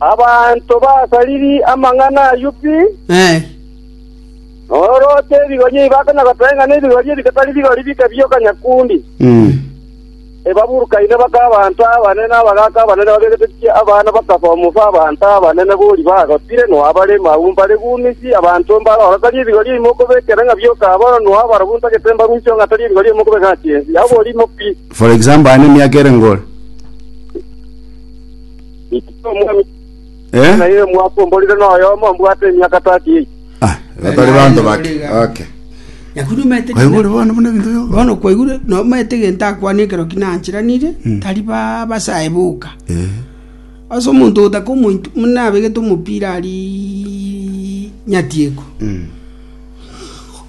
Abanto basariri amang'ana ayio pi, norooche ebigoria ebi bakanya goteba ng'a nebigoria ebi tibitari bigori bike bi'okanyakundi. Ebaburukaine baka abanto abanene na abagaaka abanene babegetetie abana bakaba omobe abanto abanene bori bagotire noa bare mabu mbare gumisi abanto mbare oro tari ebigoria ebi mokobekera ng'a bi'okaba oro noa abarabwo ntagete mbarusie oro ng'a tari ebigoria ebi mokobeka ng'a chinsi. Oborimo pi. For example, aye nemiaka ere ngore? Ikinya omwami Eh? na iye mwaka omborire noyomo mbwate emiaka tati eye. Ah, batari banto bake. Okay. Nakuru mete Kwa hivyo bwana bwana bintu byo. bono kwaigure no mete genta akwane ekero kinanchiranire tari ba basae boka Eh. ase omonto otaka omonto muna abegete omopira ari nyatieko Mm.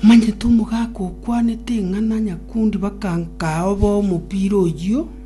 omanyete omogaka okwanete eng'ana nyakundi bakanka oba omopira oyio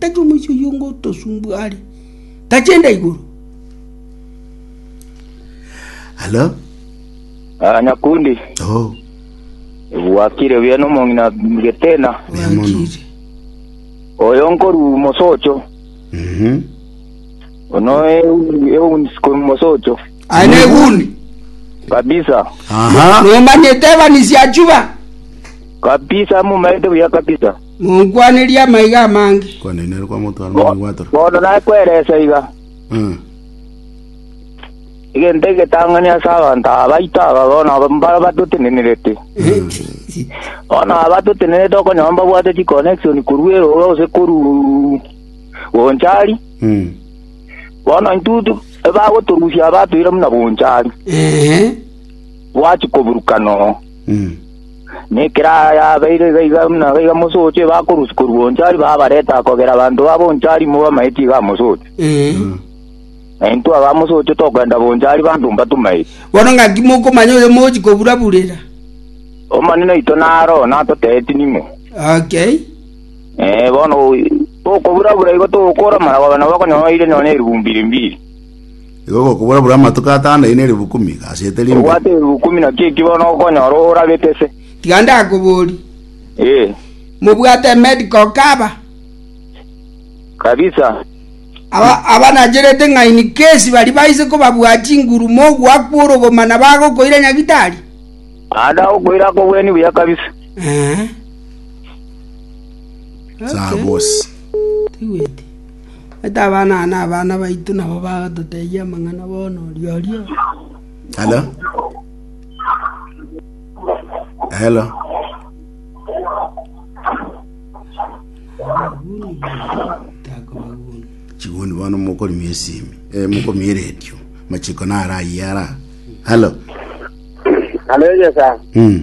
Tari omoisia oyio ngotosumbua are, tachenda igoro. Halo? Ah, nyakundi Oh, ebwakire buya nomong'ina getena buya mono. Wakire. oyo nkoru mosocho Mhm. ono eunsiko mosocho Ane guni. kabisa Aha. Nomanyete evanisia achuba. kabisa mumaete buya kabisa Monkwanerie amaiga amange. Bono nakwerese iga, egento egetang'ani ase abanto aba baito aba bono mbaro batotenenerete. Bono aba batotenenerete okonyora mbabwate chiconnection korwa erooro gose korwa Bonchari, bono intwe ebagotorusia aba batweire buna Bonchari, bwachia koburukana oo. Na ekero ayabeire iga iga na iga iga mosoche, bakorusia korwa Onchari, babareta akogera abanto ba Bonchari ime bamaetie iga amosoche. Ee. Na intwe aba amosoche togenda Bonchari banto mbatumaetie. Bono ng'aki mokomanya oyo mochi kobura-burera? Omonene oito naro oo natoteeti ning'o. Okay. Eh, bono tokobura-bura igo togokora amalagoba nabo bakonyora oire nonya erigumbi rimbiri. Igo gokobora buna amatuko atano aino eribu ikomi, gasete rimbe. Obwate eribu ikomi naki eki bono okonyora oragete se. Tiga ndakoborie. Ee. Mobwate emedical cover? Kabisa. Aba abanacherete ng'a in case baria baise kobabua chinguru mogoakwa orogoma na bagokoira nyagitari? Naende agokoira akobweni buya kabisa. Eeh. Saa bosi. Tiweti. Omanyete abana aya nabana baito nabo bagototebia amang'ana bono oria oria. Hello? Hello? Takobaguni. Chiguni bono mokorimia esimi. Eh, mokomia eredio. Machiko nara ayara. Hello? Haleluya sa. Mm.